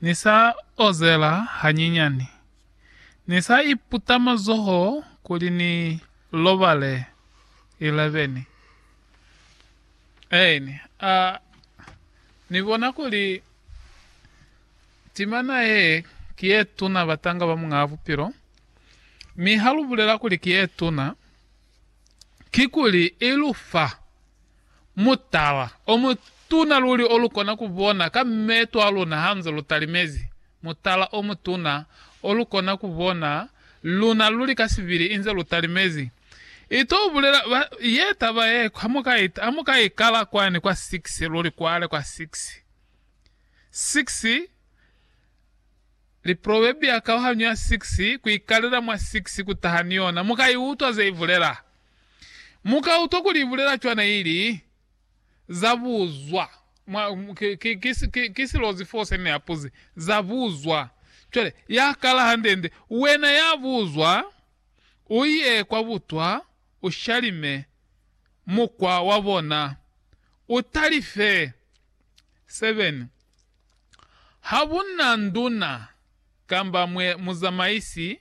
Ni sa ozela hanyinyani. Ni sa iputa mazoho kuli ni lobale. 11 Aeni, a ni bona kuli timana ye ki ye tuna batanga ba Muñaa Bupilo, mi ha lu bulela kuli ki ye tuna, kikuli i lu fa mutala o mutuna luli o lu kona ku bona ka meto a luna hanze lu talimezi, mutala o mutuna o lu kona ku bona luna luli ka sibili inze lu talimezi. I to bulela ba, ye taba ye, ha mu ka i, ha mu ka i kala kwani kwa six, luli kwale kwa six, six, Liprowebia kauhanyo ya 6 ku ikalela mwa 6 ku taha ni yona, mu ka i utwa ze i bulela. Mu ka utwa kuli i bulela cwana ili, Za buzwa. Mwa, ki, ki, ki, ki, ki silozi foo se ne a puzi, Za buzwa. Cwale, ya kala hande-nde, Wena ya buzwa, u ye kwa butwa, u shalime mukwa wa bona, u talife. 7. Ha ku na nduna kamba mwe muzamaisi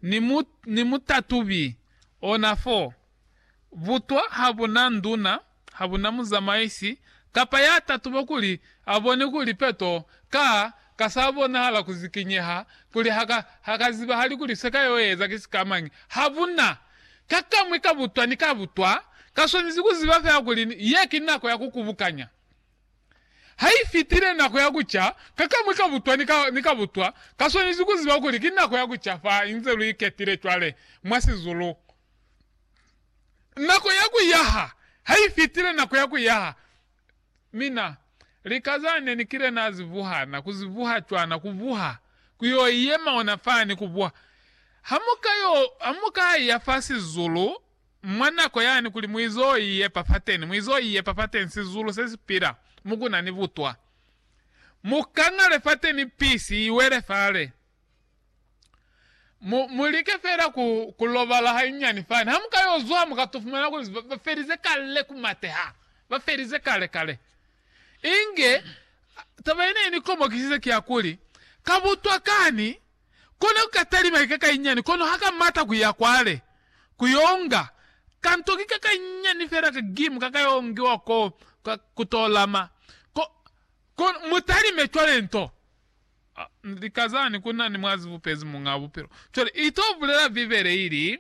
ni mu, ni mutatubi, ona fo. Butwa ha bu na nduna, ha bu na muzamaisi, kapa ya tatuba kuli a bone kuli peto ka, ka sa bonahala ku zikinyeha, kuli ha ka, ha ka zibahali kuli se ka yo eza ki sikamañi. Ha bu na. Ka kamwi ka butwa ni ka butwa, ka swanezi ku ziba fela kuli ye ki nako ya ku kubukanya. Haifitile nako ya kuca, kakamwi ka butwa ni ka, ni ka butwa kaswanezi kuziba kuli ki nako ya kuca fa inze lu iketile cwale mwa sizulu. Nako ya kuyaha haifitile, nako ya kuyaha. Mina, lika za ne ni kile na zi vuha, na ku zi vuha cwana, ku vuha, ku yo yema ona fani, ku vuha. Hamuka yo, hamuka ya fa sizulu, Mwa nako yani kuli muizo iye papateni, muizo iye papateni sizulu se si pila, mo ku na ni butwa. Mu ka ngale fateni pisi i wele fale. Mu, mu like fela ku, ku lobala hanyinyani fani. Ha mu ka yo zwa, mu ka to fumana kuli ba, ba felize kale ku mateha. Ba felize kale, kale. Inge, taba ye ne i ni komokisize ki ya kuli, Ka butwa kani Kona ku ka talima ikakainyani kono ha ka mata ku ya kwale ku yo nga kanto kikakainyani fela ka gimu ka ka yo ngiwa ko ka ku to lama ko ko mu talime cwale nto lika zani ku na ni mwazi bupezi Muñ'a Bupilo. Cwale i to bulela Bibele ili.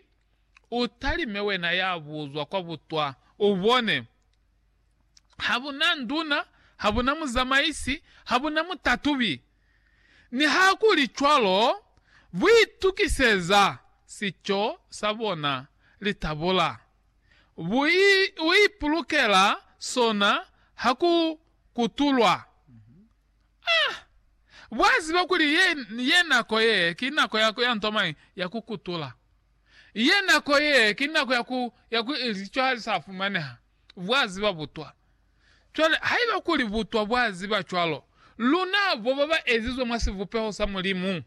U talime wena ya buzwa kwa butwa, u bone. Ha bu na nduna, ha bu na muzamaisi, ha bu na mutatubi. Nihakulicwalo, bu itukiseza sico sa bona litabula. Bu i, u ipulukela sona ha ku kutulwa. Ah! Bwa ziba kuli ye, ye nako ye ki nako ya, ya nto mañi? Ya ku kutula. Ye nako ye, ki nako ya ku, ya ku ili cwa hali sa fumaneha, bwa ziba butwa. Cwale, haiba kuli butwa bwa ziba cwalo, luna bo ba ba ezizwe mwa sivupeho sa Mulimu,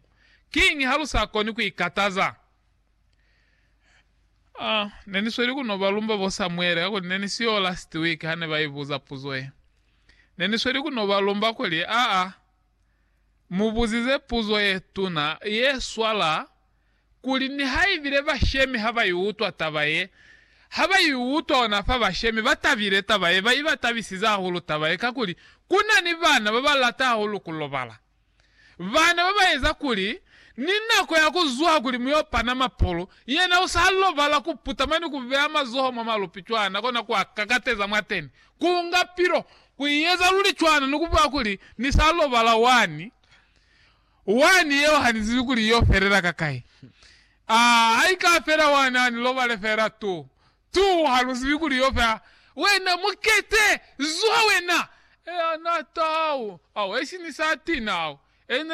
kiñi ha lu sa koni ku ikataza? Oh, ne ni sweli ku no ba lumba bo Samuele, kakuli ne ni siyo last week ha ne ba ibuza puzo ye. Ne ni sweli ku no ba lumba kuli, Aa, mu buzize puzo ye tuna, ye swala kuli nihaibile bashemi ha ba i utwa taba ye, ha ba i utwa ona fa bashemi ba tabile taba ye, ba i ba tabisize hahulu taba ye, kakuli ku na ni bana ba ba lata hahulu ku lobala. Bana ba ba eza kuli ni nako ya ku zwa kuli mu y'o pana mapolo, yena u sa lobala ku putama ni ku beya mazoho mwa malupi cwana kona ku a kakateza mwateni, ku nga pilo, ku i eza luli cwana ni ku bulela kuli, Ni sa lobala wani. Wani yeo ha ni zibi kuli yo felela ka kai. Aa, ha i ka fela wani ha ni lobale fela tu. Tu, ha lu zibi kuli yo fela. Wena mukete! Zwa wena! Ea na taha u. Au, esi ni sa tina au. Ena.